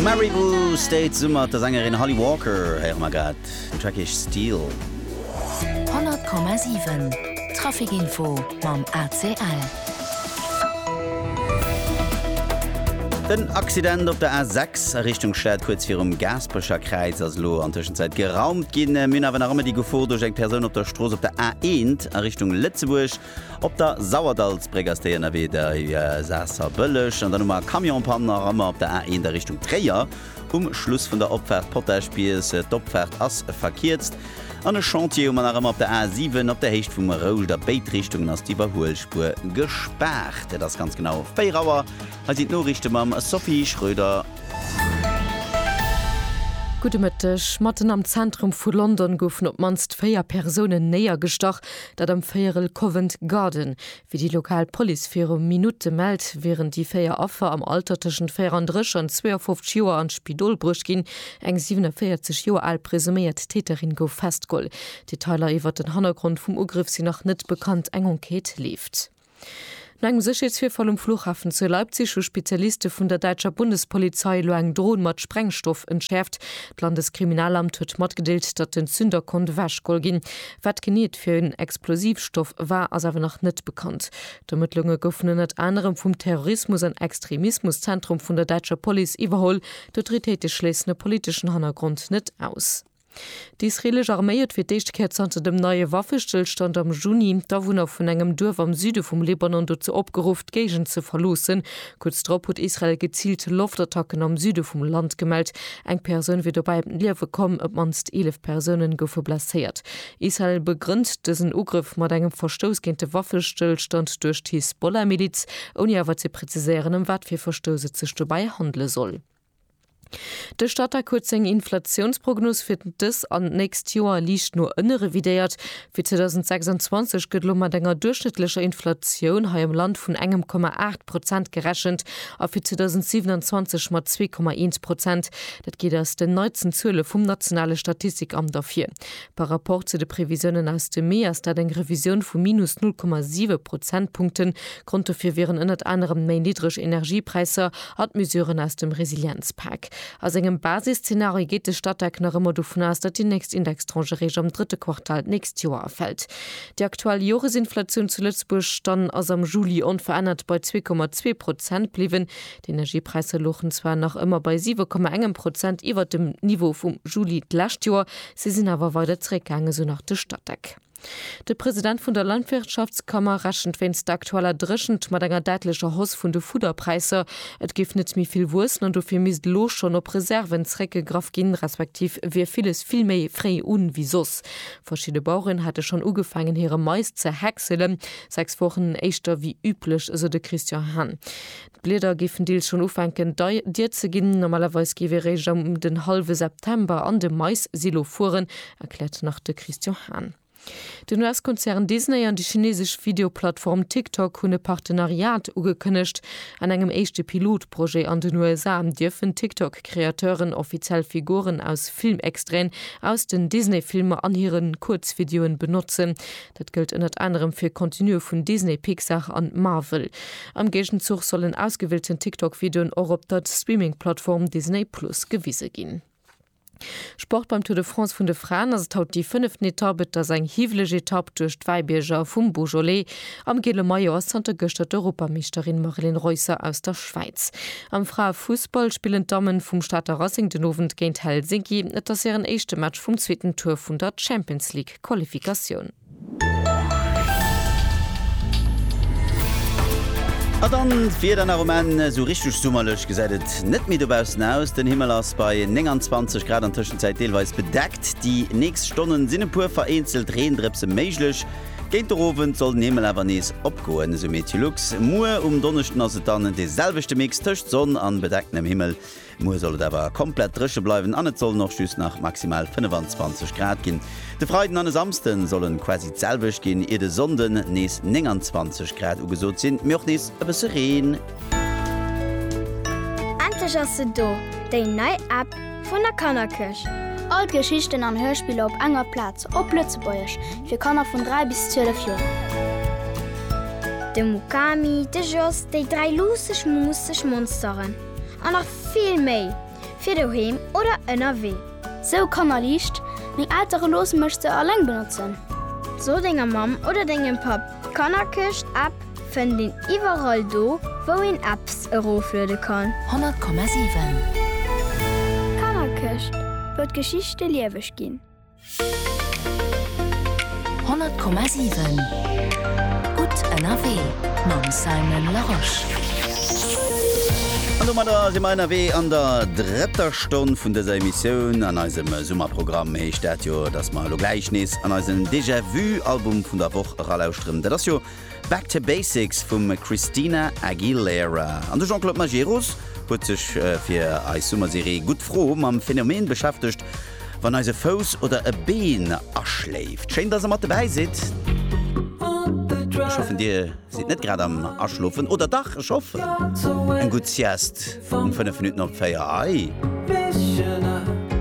Maribou State Summer mat der Sängerin Holly Walker héiere mer grad, den Track heescht Steel. 100,7 Trafic Info mam ACL. Den Accident op der A6 a Richtung Stad kuerz virum Gaasperecher Kräiz ass elo an Tëschenzäit geraumt ginn. Mir hunn awer nach ëmmer déi Gefor duerch eng Persoun op der Strooss op der A1 a Richtung Lëtzebuerg. Op der Sauerdallsbréck ass déi ënnerwee bei Saasserbëlleg. An dann hu mer Camionspann nach ëmmer op der A1 a Richtung Tréier um Schluss vun der Opfaart Potaschbies. D'Opfaart ass verkierzt. An e Chantier hu mer nach ëmmer op der A7. Op der Héicht vum Rouscht a béid Richtungen ass d'Iwwerhuelspuer gespaart. Et ass ganz genau 4 Auer. Hei sinn d'Noriichte mam Sophie Schröder. Gudde Mëtteg. Matten am Zentrum vu London goufen op d'mannst 4 Persounen néiergestach. Dat am Véierel Covent Garden, wéi déi lokal Police viru Minutte mellt, wieren déi véier Affer am Alter tëschent 34 an 52 Joer an d'Spidol bruecht ginn. Eng 47 Joer al presuméiert Täterin gouf festgeholl. Detailer iwwert den Hannergrond vum Ugrëff sinn nach net bekannt, eng Enquête leeft. No engem Sécherheetsvirfall um Flughafen zu Leipzig hu Spezialiste vun der däitscher Bundespolizei elo eng Dron mat Sprengstoff entschäerft. D'Landeskriminalamt huet matgedeelt, datt den Zünder konnt ewechgeholl ginn. Wat genee et fir en Explosivstoff war, ass awer nach net bekannt. D'Ermëttlunge goufen ënnert anerem vum Terrorismus an Extremismuszentrum vun der däitscher Police iwwerholl. D'Autoritéite schléissen e politeschen Hannergrond net aus. D'isreelesch Arméi huet fir d'éischt Kéier zanter dem neie Waffestëllstand am Juni d'Awunner vun engem Duerf am Süde vum Libanon dozou opgeruff, d'Géigend ze verloossen. Kuerz drop huet Israel geziilt Loftattacken am Süde vum Land gemellt. Eng Persoun wier dobäi ëm d'Liewe komm, op d'mannst 11 Persounen goufe blesséiert. Israel begrënnt dësen Ugrëff mat engem Verstouss géint de Waffestëllstand duerch d'Hisbollah-Miliz, ouni awer ze preziséieren, ëm wat fir Verstouss et sech dobäi handele soll. De Statec huet seng Inflatiounsprognos fir dës an d'nächst Joer liicht no ënne revidéiert. Fir 2026 gëtt elo mat enger duerchschnëttlecher Inflatioun hei am Land vun engem Komma aacht Prozent gerechent a fir 2027 mat zwee Komma eent Prozent. Dat geet aus den neitsten Zuele vum nationale Statistikamt ervir. Par Rapport zu de Previsiounen aus dem Mee ass dat eng Revisioun vu minus null Komma siwe Prozentpunkten, Grond dofir wieren ënnert anerem méi niddreg Energiepräisser an d'Mesuren aus dem Resilienzpak. A sengem Basisszenario geet de Statec nach ëmmer dovun aus, datt déi nächst Indextranche réischt am drëtte Quartal d'nächst Joer erfält. Déi aktuell Joresinflatioun zu Lëtzebuerg dann ass am Juli onverännert bei zwee Komma zwee Prozent bliwwen. D'Energiepräisser louchen zwar nach ëmmer bei siwe Komma engem Prozent iwwert dem Niveau vum Juli d'lescht Joer, se sinn awer weider zeréckgaangen, esou nach de Statec. De President vun der Landwirtschaftskammer rechent wéinst der aktueller Dréchent mat enger däitlecher Hausse vun de Fudderpräisser. Et géif net méi vill wuessen an dofir misst elo schonn op Reserven zeréckgegraff ginn, respektiv wier villes vill méi fréi u wéi soss. Verschidde Baueren hätte schonn ugefaangen hire Mais ze häckselen, sechs Wochen éischter wéi üblech, esou de Christian Hahn. D'Blieder géifen deels schonn ufänken dir ze ginn. Normalerweis géif ee réischt ëm den hallwe September an de Mais-Silo fueren, erkläert nach de Christian Hahn. Den US-Konzern Disney an déi chinesesch Videoplattform TikTok hunn e Partenariat ugekënnegt. An engem éischte Pilotprojet an den USA dierfen TikTok-Kreateuren offiziell Figuren aus Filmextraiten aus den Disney-Filmer an hire Kuerzvideoe benotzen. Dat gëllt ënnert anerem fir Contenue vun Disney, Pixar an Marvel. Am Géigenzuch sollen ausgewielten TikTok-Videoen och op der Streaming-Plattform Disney Plus gewise ginn. Sport Beim Tour de France vun de Fraen ass et haut déi fënneften Etapp. Et ass eng hiwweleg Etapp duerch d'Wäibierger vum Beaujolais. Am giele Maillot ass zanter gëschter d'Europameeschterin Marilyn Reusser aus der Schwäiz. Am Fraefussball spillen d'Dammen vum Stater Racing den Owend géint Helsinki. Et ass hiren éischte Match vum zweeten Tour vun der Champions League. Qualifikatioun. A dann d'Wieder nach um Enn, esou richteg summerlech gesäit et net méi dobaussen aus. Den Himmel ass bei 29 Grad an Tëschenzäit deelweis bedeckt. Déi nächst Stonnen sinn e puer vereenzelt Reendrëpse méiglech. Géint der Owend soll den Himmel awer nees opgoen, esou Meteolux. Muer um Donneschden ass et dann de selwechte Mix tëscht Sonn an bedecktenem Himmel. Muer soll et awer komplett dréche bleiwen an et sollen och just nach maximal 25 Grad ginn. De Freiden an e Samsde sollen quasi d'selwecht ginn, ier de Sonnden nees 29 Grad ugesot sinn, mee och nees e bësse Reen. Endlech ass se do, déi nei App vun der Kannerkëscht! All d'Geschichten an Hörspiller op enger Plaz, op Lëtzebuergesch, fir Kanner vun 3 bis 12 Joer. De Mukami, de Jos, déi dräi luusseg, muusseg Monsteren. an nach vill méi fir doheem oder ënnerwee. Sou kannerliicht, Meng Eltere loosse mech se alleng benotzen. So denger Mamm oder dengem Papp, d'Kannerkëscht App fënnt een iwwerall do wou een Apps erofluede kann. 100,7. D'Kannerkëscht wëll d'Geschichte lieweg ginn. 100,7 Gutt ënnerwee mam Simon Larosche. An domadder si mer ënnerwee an der drëtter Stonn vun dëser Emissioun. An eisem Summerprogramm heescht dat jo, dass mer elo gläich nees an eisen Déjà-vu-Album vun der Woch eralauschteren. Dat ass jo Back to Basics vum Christina Aguilera an de Jean-Claude Majerus huet sech fir eis Summerserie Gutt Fro mam Phänomen beschäftegt, wann eis e Fouss oder e Been aschléift. Schéin, dass der mat dobäi sidd. Ech hoffen, dir sidd net grad am Aschlofen. Oder dach? Ech hoffen, eng gutt Sieste um 5 Minutten op 4. Ahii.